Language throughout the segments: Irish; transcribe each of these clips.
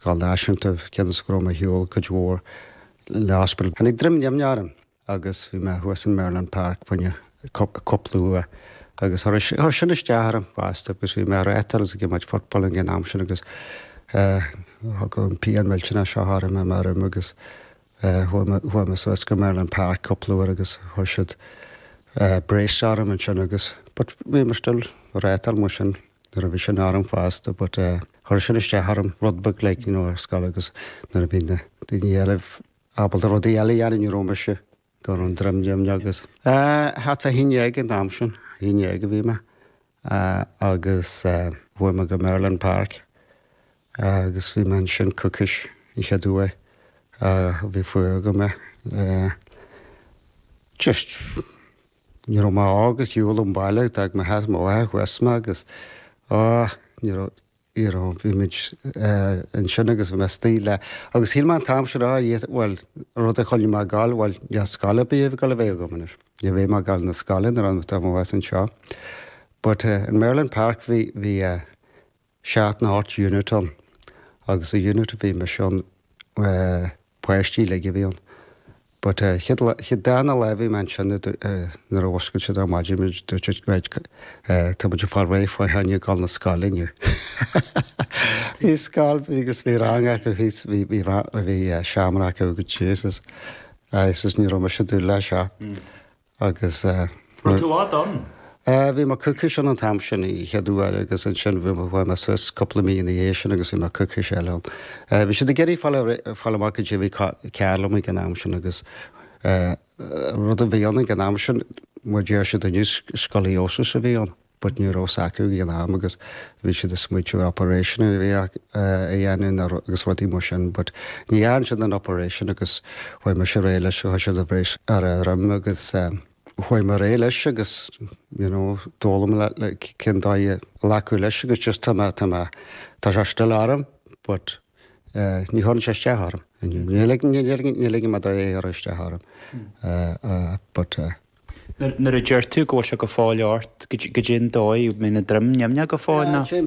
Scoil náisiúnta cionn is go raibh mé ar shiúl cuid mhór le Hospital. Tháinig droim nimhneach orm agus bhí mé thuas in Merlin Park fá choinne cúpla uair agus chuir sin isteach orm fosta agus bhí mé ag reáchtáil is ag imirt football ag an am sin agus thiocfadh an pian millteanach seo orm i mo dhroim agus Chuaigh mé suas go Merlin Park cúpla uair agus chuir siad brace orm ansin agus, but bhí mé still ag reáchtáil mar sin nuair a bhí sin orm fosta but chuir sin isteach orm rud beag like you know ar scoil agus nuair a bhí na daoine eile ábalta rudaí eile a dhéanamh ní raibh mise go raibh an droim nimhneach agus, ah, thart fá haon déag an t-am sin, haon déag a bhí mé. Eh agus eh chuaigh mé go Merlin Park agus bhí mé ansin coicís an chéad uair ah bhí fuath agam air. Eh just ní raibh mé ar shiúl ón bhaile d'fhág m'athair is mo mháthair thuas mé agus ah ní raibh Iarán. Bhí muid ansin agus bhí mé sta le. Agus shíl mé an t-am sin, á, dhia, bhuel, rud a choinnigh mé ag gabháil, bhuel, níl scoil ar bith ag gabháil a bheidh agam anois. Ní bheidh mé ag gabháil na scoile nuair an t-am a bheas mé anseo. But in Merlin Park bhí, bhí seacht nó ocht unit ann. Agus a unit a bhí mise ann, páistí uilig a bhí ann. But eh chéad lá, chéad darna lá a bhí mé ansin a dúirt eh nuair a mhuscail siad ar maidin muid dúirt siad right eh tá muid ag fáil réidh fá choinne a ghabháil na scoile inniu. Bhí scoil, bhí agus bhí rang acu thíos, bhí bhí rang, bhí eh seomra acu agus Jesus. Agus ní raibh mise ag dúil leis seo. Agus. Rud tú á done? Bhí mé coicís ann an t-am sin, an chéad uair, agus ansin bhí mé, chuaigh mé suas cúpla mí ina dhiaidh sin agus bhí mé coicís eile ann. Bhí siad ag iarraidh fáil, fáil amach goidé a bhí cearr liom ag an am sin agus rud a bhí ann ag an am sin, mar a deir siad inniu, scoliosis a bhí ann. but ní raibh 's acu ag an am agus bhí siad ag smaointiú ar operation a dhéanamh na agus rudaí mar sin but ní dhearn siad an operation agus chuaigh mé ar aghaidh leis agus chuir siad brace ar mo dhroim agus chuaigh mé ar aghaidh leis agus you know d'fhoghlaim mé like cén dóigh a ghlacadh leis agus just tá mé tá mé tá sé still orm but eh, ní chuireann sé isteach orm. Ní lig- ní lig- ní lig mé dó cur isteach orm. Eh, eh, but eh, Nuair a deir tú go bhfuil sé go fóill ort, goidé an dóigh, mbíonn an droim nimhneach go fóill, nó? Sea,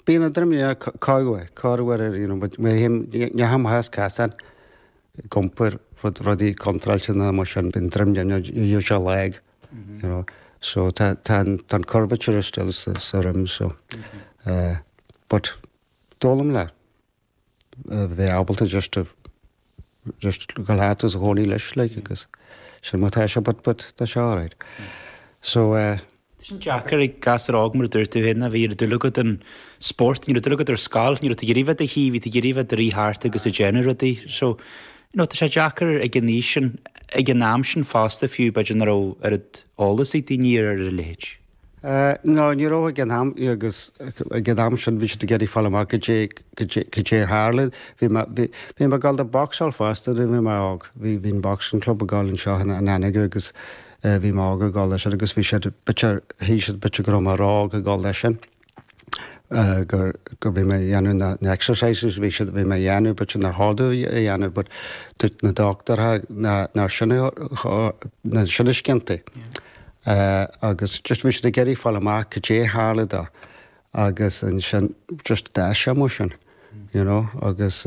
bíonn an droim nimhneach corr uair, corr uair, you know, but mé féin, má théim thar scáthán ag iompar rud, rudaí contráilte nó mar sin, bíonn droim nimhneach usually lag, you know, so tá, tá an, tá an curvature still sa, sa droim, so, eh, but d'fhoghlaim mé. a bheith ábalta just agus do leath as a gcónaí leis le agus sea má tá sé but but tá sé all right. So eh, an-deacair ag gasar óg mar a dúirt tú féin a bhí an oiread dúil agat i spórt, ní raibh dúil agat ar scoil, ní raibh tú ag iarraidh bheith i do shuí, bhí tú ag iarraidh bheith i do rith thart agus ag déanamh rudaí. So you know tá sé deacair ag an aois sin, ag an am sin fosta fiú b'fhéidir nach raibh oiread eolais ag daoine ar a leithéid. Nó ní raibh ag an am, agus ag an am sin bhí siad ag iarraidh fáil amach goidé, goidé, goidé a tharla. Bhí mé, bhí, bhí mé ag dul don bhocsáil fosta nuair a bhí mé óg, bhí, bhí an boxing club ag gabháil anseo in, in Anagaire agus eh bhí mé óg ag dul leis sin agus bhí siad, b'fhéidir, shíl siad b'fhéidir go raibh mé róóg ag dul leis sin. gur gur bhí mé ag déanamh na na exercises a bhí siad bhí mé ag déanamh but sin ar shárú a dhéanamh but dúirt na dochtúirí nach nach sin a nach sin ba chiontaí. agus just bhí siad ag iarraidh fáil amach goidé tharla do agus ansin just d'fhás sé amach as sin you know agus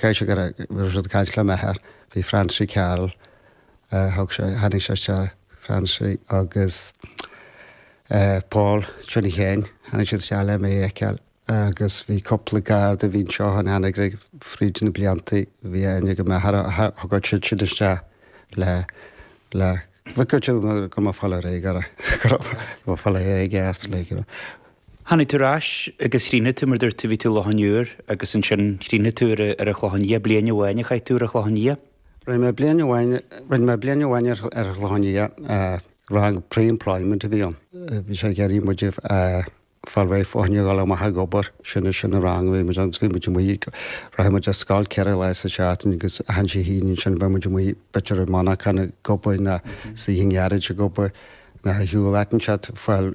Chaith sé go raibh, bhí sé ag caint le m'athair, bhí Francie Carroll, thug sé, tháinig sé isteach, Francie agus Paul Johnny Sheáin, tháinig siad isteach le mé a fheiceáil agus bhí cúpla Garda a bhí anseo in Anagaire fríd na blianta, bhí aithne ag m'athair, tháinig siadsan isteach le, le, bhí go mb'fhíor é go raibh, go raibh, go mb'fhíor é i gceart, like, you know. Tháinig tú ar ais agus chríochnaigh tú mar dúirt tú, bhí tú i Loch an Iúir agus ansin chríochnaigh tú ar an Chlochán Liath, bliain amháin a chaith tú ar an Chlochán Liath? Rinne mé bliain amháin, rinne mé bliain amháin ar an Chlochán Liath, rang pre-employment a bhí ann, bhí sé ag iarraidh muid a fháil réidh fá choinne a dhul amach ag obair, sin, sin an rang a bhí muid ann agus bhí muid amuigh, rachadh muid ar scoil ceithre lá sa tseachtain agus achan Dé hAoine ansin bheadh muid amuigh b'fhéidir i monarcha ag obair nó sa Dhún Gearaid ag obair nó a shiúl, aitinn siad, fáil,